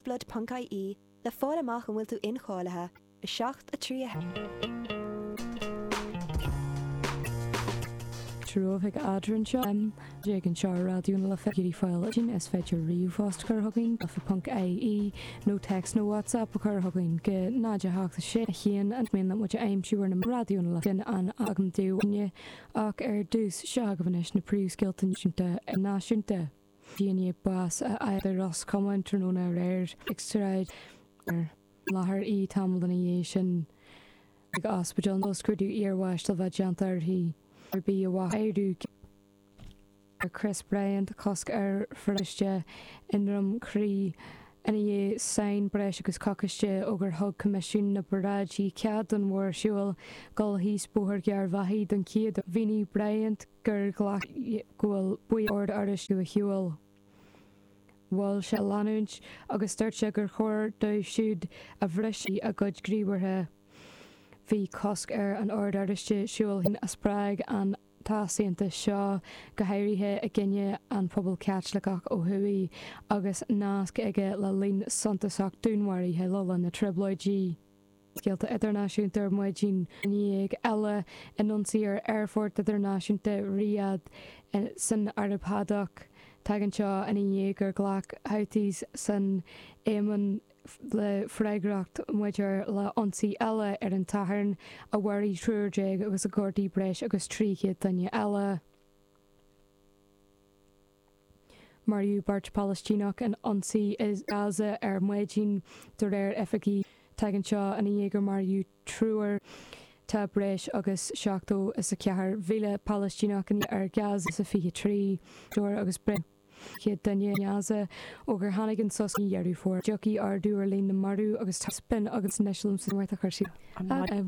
Blood.ie le fáil amach an bhfuil tú incháilithe i 7 a 3 tráthnóna againn anseo M. Ag an seár raidió na life ar fáil anois is féidir ríomhphost a chur chugainn life.ie nó téacs nó whatsapp a chur chugainn go 078 1 más mian leat muid a aimsiú ar na meáin raidió na life sin againn dúinne ach ar dtús seo agaibh anois na príomhscéalta náisiúnta. Duine bás a fháil i Ros Comáin tráthnóna aréir ag sráid ar an láthair í tamall ina dhiaidh sin ag ospidéal scrúdú iarbháis le bheith déanta uirthi ar bith a mhaith airiú ceaptha ar Chris Bryant cosc ar pharáid i nDroim Crí ina dhiaidh sin breis agus coicíste ó gur thug Coimisiún na bParáidí cead don mhórshiúl dul síos Bóthar Gharbhachaidh don chéad Mhínigh Bryant gur ghlac go bhfuil baill Ord Oráisteach ag siúl. Mhol sé a leanúint agus dúirt sé gur chóir dóibh siúd a bhrisfeadh a gcuid gníomhartha. Bhí cosc ar an Ord Oráisteach siúl a spreag an t-easaontas seo, go háirithe i gcoinne an phobail Chaitliceach ó thuaidh, agus nasc aige le líon suntasach dúnmharaithe le linn na dTrioblóidí. Scéalta idirnáisiúnta ar maidin dhéag eile in ionsaí ar Aerfort Idirnáisiúnta Riyadh san Araib Shádach. Tagann seo ina dhiaidh gur ghlac Houthis san Éimin le freagracht maidir le hionsaí eile ar an Satharn a mharaigh triúr déag agus ar gortaíodh breis agus 300 duine eile. Maraíodh beirt Palaistíneach in ionsaí i nGaza ar maidin, de réir oifigigh. Tagann seo ina dhiaidh gur maraíodh triúr. Tá breis agus seachtó is a ceathair míle Palaistíneach in ar Gaza sa 23 Fómhair agus breis is céad duine i nGaza ó gur tháinig an sos mí Dheireadh Fómhair. Tiocfaidh ardú ar líon na marú agus taispeáin againn anois liomsa smaoineamh a chuir sí.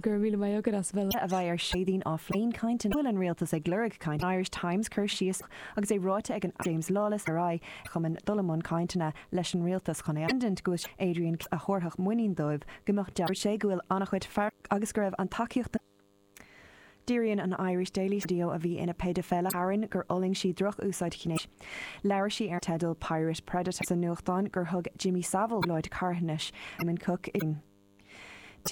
Go raibh míle maith agat as a bheith linn. a bheidh ar Chéadaoin á phlé. Caint an An bhfuil an rialtas ag lorg caint Irish Times cur síos a. Agus é ráite ag an Aire James Lawless ar aghaidh ar chumainn dul i mbun cainteanna leis an Rialtas chun é a aithint go bhfuil sé Adrian Keys a thabharfadh muinín dóibh go mbeadh Dúirt sé go bhfuil an-chuid fear agus go raibh an tacaíocht a Díríonn an Irish Daily sa Dio a bhí ina péidifeile tharainn gur fhulaing sí droch-úsáid ghnéis. Labhair sí ar an teideal Pirate Predator sa nuachtán gur thug Jimmy Savile láithreach carthanais Simon Cooke i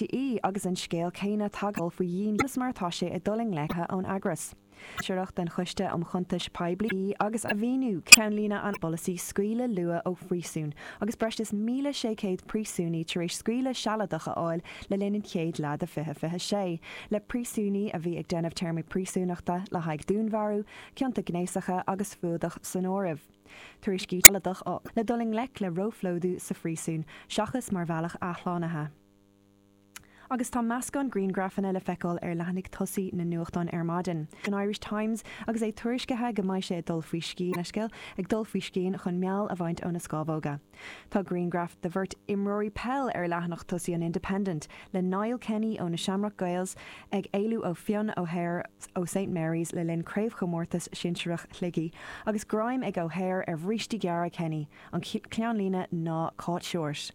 ii, Agus an scéal céanna tagtha faoi dhíon conas mar atá sé ag dul i ngleic ón eagras sinsearach don Choiste um Chuntais Poiblí, ii, Agus a mhíniú ceannlíne ná polasaí scaoileadh luath ó phríosún agus breis is 1,600 príosúnaí tar éis scaoileadh sealadach a fháil le linn an chéad leath de 2026 le príosúnaigh a bhí ag déanamh téarmaí príosúnachta le haghaidh dúnmharú, cionta gnéasacha agus fuadach san áireamh. Tuairiscí sealadacha le dul i ngleic le róphlódú sa phríosún seachas mar bhealach athshlánaithe. Agus tá meascán grianghrafanna le feiceáil ar leathanaigh tosaigh na nuachtán ar maidin. An Irish Times agus é tuairiscithe go mbeidh sé ag dul faoi scian, leithscéal, ag dul faoi scian chun meall a bhaint óna scámhóga. Tá grianghraf de bheirt imreoirí peile ar leathanach tosaigh an Independent le Niall Kenny ó na Shamrock Gaels ag éalú ó Fionn O'Hare ó Saint Marys le linn Craobhchomórtas Sinsearach Shligigh agus greim ag O'Hare ar bhrístí gearra Kenny. An ceannlíne ná Caught Short.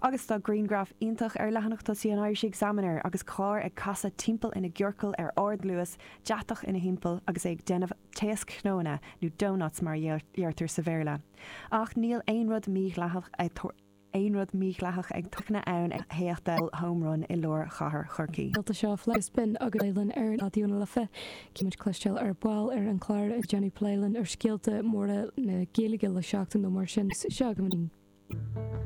Agus tá grianghraf iontach ar leathanach tosaigh an Irish Examiner agus carr ag casadh timpeall ina gciorcal ar ardluas, deatach ina thimpeall agus é ag déanamh taoschnónna,, nó doughnuts mar a deirtear sa Bhéarla. Ach níl aon rud mí-dhleathach ag tarlú ann ag imeacht Home Run i lár chathair Chorcaí. Gaolta seo Fleadh Spin agus Gael-Linn ar Raidió na Life. Beimid ag cloisteáil ar ball ar an clár ag déanamh plé linn ar scéalta móra na Gaeilge le seachtain nó mar sin seo againn.